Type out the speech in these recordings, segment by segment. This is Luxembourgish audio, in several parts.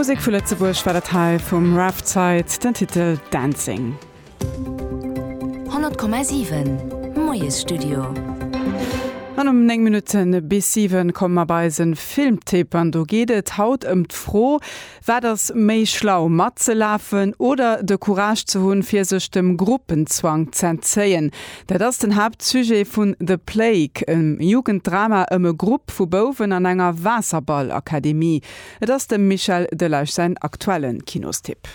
Musek vu Lëtzebuerg war dat hei vum Raf Zeit, den Titel Dancing. 100,7 Moiesstudio. An um 9 Minutten bis 7 komme mer bei eise Filmtipp. An do geet et haut ëm d'Fro, Wat ass méi schlau, matzelafen oder de Courage ze hunn, fir sech dem Gruppenzwang z'entzéien? Dat ass den Haaptsujet vun The Plague, e Jugenddrama ëm e Grupp vu Bouwen an enger Waasserballakademie. Et ass dem Michel Delage säin aktuelle Kinostipp.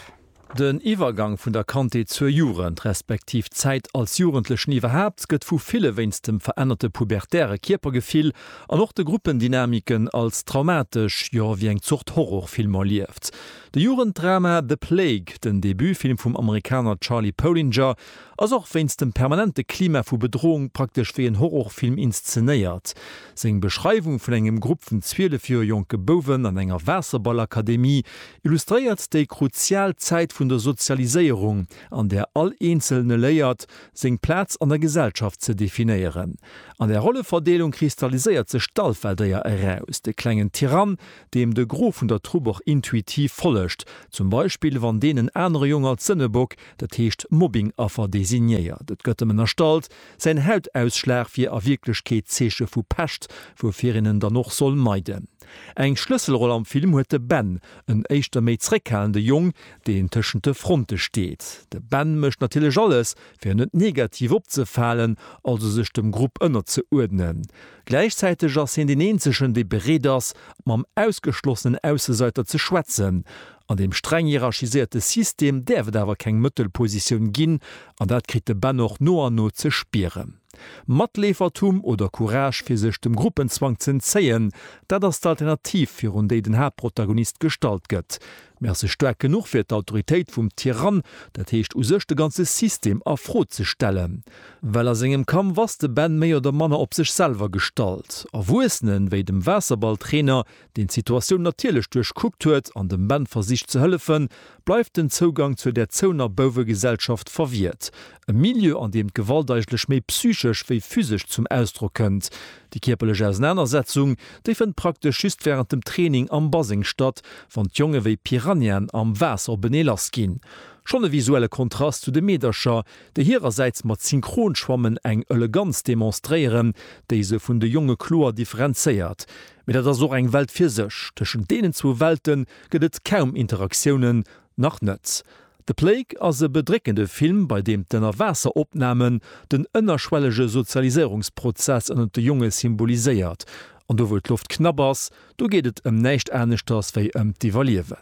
Den Iwwergang vun der Kandheet zur Jugend, respektiv d'Zäit als Jugendlechen iwwerhaapt, gëtt vu ville wéinst dem verännerte pubertäre Kierpergefill an och de Gruppendynamiken als traumatesch, jo wéi eng Zort Horrorfilm erlieft. De Jugenddrama The Plague, den Debutfilm vum Amerikaner Charlie Polinger, Ass och wéinst dem permanente Klima vu Bedrohung praktesch wéi en Horrorfilm inszenéiert. Seng Beschreiwung vun engem Grupp vun 12 Joer jonke Bouwen an enger Waasserballakademie illustréiert déi kruzial Zäit vun der Sozialiséierung, an där all Eenzelne léiert, seng Plaz an der Gesellschaft ze definéieren. An där Rolleverdeelung kristalliséiert sech d'Alpha-Déier eraus, de klengen Tyrann, deem de Gros vun der Trupp och intuitiv follegt, zum Beispill wann deen en anere Jong als Sënnebock, Dat heescht Mobbingaffer designéiert, et gëtt em ënnerstallt, säin Hautausschlag wier a Wierklechkeet d'Zeeche vu Pescht, woufir een en dann och soll meiden. Eng Schlësselroll am Film huet de Ben, en éischter méi zréckhalende Jong, deen tëschent de Fronte steet. De Ben mécht natierlech alles, fir net negativ opzefalen, also sech dem Grupp ënnerzeuerdnen. Gläichzäiteg ass hien deen eenzegen, dee bereet ass, mam ausgeschlossenen Aussesäiter ze schwätzen. An deem streng hierarchiséierte System däerf et awer keng Mëttelpositioun ginn, an dat kritt de Ben och no an no ze spieren. Matleefertum oder Courage fir sech dem Gruppenzwang z'entzéien, dat ass d'Alternativ, virun déi den Haaptprotagonist gestallt gëtt. Mee ass se staark genuch fir d'Autoritéit vum Tyrann, dat heescht u sech de ganze System a Fro ze stellen? Well a sengem Kampf ass de Ben méi oder manner op sech selwer gestallt. Erwuessenen, wéi dem Waasserballtrainer, deen d'Situatioun natierlech duerchkuckt huet an dem Ben versicht ze hëllefen, bleift den Zougang zur der zouener Bouwegesellschaft verwiert. E Milieu, an deem d'Gewalt eigentlech méi psychesch wéi physesch zum Ausdrock kënnt. Déi kierperlech Ausenanersetzung, déi fënnt praktesch just wärend dem Training am Baseng statt, wann d'Jonge wéi Piranhaen am Waasser openee lass ginn. Schonn e visuelle Kontrast zu de Meedercher, déi hirersäits mat Synchronschwammen eng Eleganz demonstréieren, déi se vun de Jonge kloer differenzéiert. Mee dat ass och eng Welt fir sech. Tëschent deenen zwou Welte gëtt et kaum Interaktiounen, Nach net. The Plague ass e bedréckende Film, bei deem d'Ënnerwaasseropnamen den ënnerschwellege Sozialiséierungsprozess ënnert de Jonge symboliséiert. An do wou d'Loft knapp ass, do geet et ëm näischt aneschters wéi ëm d'Iwwerliewen.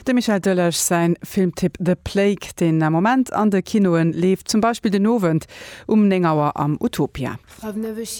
Dem Michel Delage säin Filmtipp The Plague, deen am Moment an de Kinoen leeft, zum Beispill den Owend um 9 Auer am Utopia.